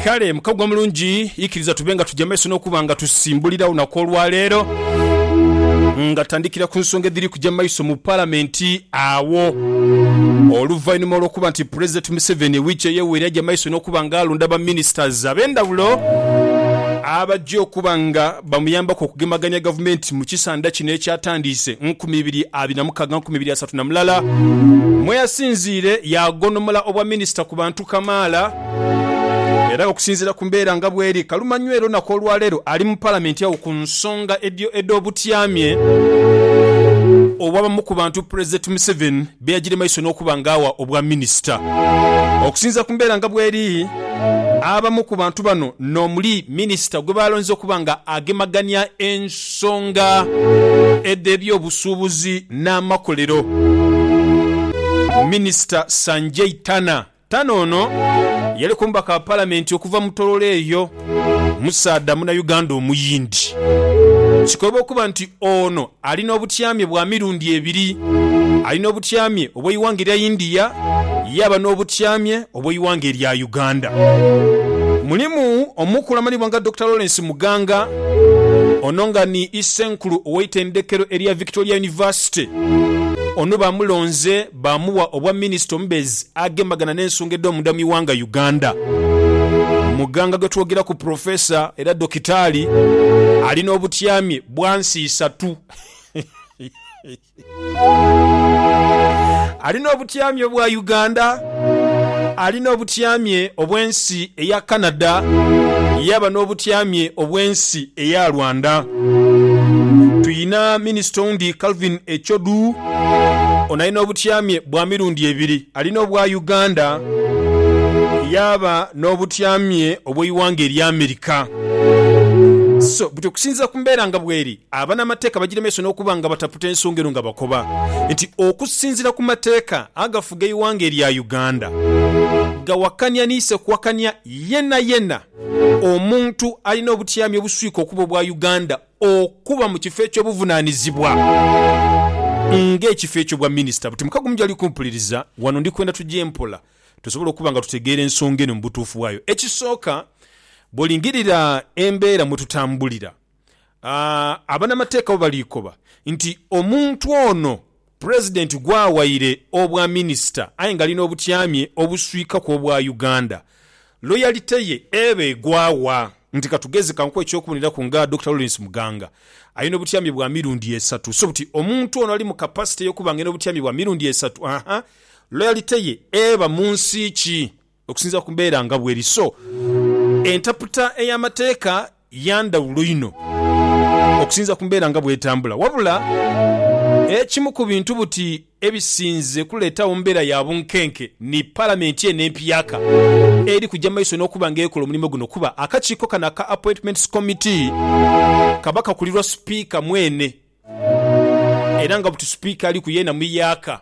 Kale mukagwa mulungi, ikiriza tube nga tuja maiso n'okuba nga tusimbulira olunaku olwaleero nga tandikira ku nsonga edhiri kuja maiso mu Palamenti agho oluvainhuma olw'okuba nti Pulezidenti Museveni wiiki eyeweire aja maiso n'okuba nga alonda ba Ministers ab'endhawulo abaja okuba nga bamuyambaku okugemagania gavumenti mu kisandha kino ekyatandiise nkumi ibiri abiri na mukaaga nkumi ibiri asatu na mulala mweyasinziire yaagonhomola obwa minisita ku bantu kamaala era okusinziira ku mbeera nga bweri kalumanywera onaku olwaleero ali mu palamenti agho ku nsonga edh'obutyamye obw'abamu ku bantu pulezidenti Museveni be yagira e maiso n'okuba ng'agha obwa minisita. Okusinza ku mbeera nga bweri, abamu ku bantu bano n'omuli minisita gwe baalonze okuba nga agemagania ensonga edh'ebyobusuubuzi n'amakolero, Minisita Sanjay Tanna Tano ono yali k'omubaka wa Palamenti okuva mu Tororo eyo, musaadha Munauganda Omuyindi. Kikoba okuba nti ono ali n'obutyamye bwa mirundi ebiri. Ali n'obutyamye obw'eighanga erya India yaaba n'obutyamye obw'eighanga erya Uganda. Mulimu omukulu amanhibwa nga Dokita Lawrence Muganga, ono nga ni Isenkulu ow'eitendekero erya Victoria University. Ono baamulonze. baamuwa obwa Minisita omubeezi agemagana n'ensonga edh'omunda mu ighanga Uganda. Muganga gwe twogeraku Professor era Dokitaali ali n'obutyamye bwa nsi isatu. Ali n'obutyamye obwa Uganda, ali n'obutyamye obw'ensi eya Canada yaaba n'obutyamye obw'ensi eya Rwanda. Twina minisita oundi Calvin Echodu, ono alina obutyamye bwa mirundi ebiri, alina obwa Uganda yaaba n'obutyamye obw'eighanga erya America. So butyo okusinziira ku mbeera nga bweri, abanamateeka bagira maiso n'okuba nga bataputa ensonga eno nga bakoba nti okusinziira ku mateeka agafuga eighanga erya Uganda, gawakania ni isekuwakania yenayena. Omuntu alina obutyami obuswika okuba obwa Uganda okuba mu kifo eky'obuvunanizibwa nga ekifo ekyo bwa Minisita buti mukago mugyali kumpuliriza wano ndi kwenda tugye mpola tusobole okuba nga tutegeera ensonga eno mu butuufu bwayo. Ekisooka, bwolingirira embeera mwetutambulira Abanamateeka bo baliikoba nti omuntu ono Pulezidenti gw'awaire Obwaminisita aye nga ali n'obutyamye obuswikaku obwa Uganda, loyalite ye eba egwa wa? Nti katugeze ka nkuwe eky'okuboneraku nga Dokita Lawrence Muganga ali n'obutyamye bwa mirundi esatu so buti omuntu ono ali mu kapasite y'okuba nga ali n'obutyamye bwa mirundi esatu, haa, loyalite ye eba mu nsi ki? Okusinziira ku mbeera nga bweri so entaputa ey'amateeka ya ndhawulo inho okusinziira ku mbeera nga bw'etambula. Wabula ekimu ku bintu buti ebisinze kuleetawo mbeera ya bunkenke ni Palamenti eno empyaka eri kuja mu maiso n'okuba nga ekola omulimu guno kuba akakiiko kano aka Appointments Committee kaba kakulirwa Sipiika mwene era nga buti Sipiika aliku yeena muyaaka.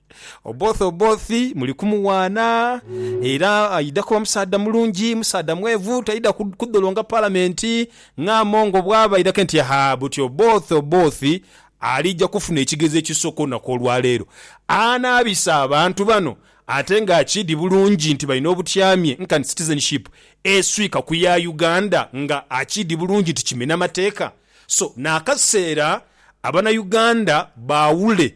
Oboth Oboth muli kumuwaana era aidha kuba musaadha mulungi, musaadha mwevu, taidha kudholonga Palamenti nga Among bwaba aidhake nti haa buti Oboth Oboth aliija kufuna ekigezo ekisooka olunaku olwaleero. Anaabisa abantu bano ate nga akiidhi bulungi nti balina obutyamye nkani Citizenship eswika ku ya Uganda nga akiidhi bulungi nti kimena mateeka so n'akaseera Abanauganda baawule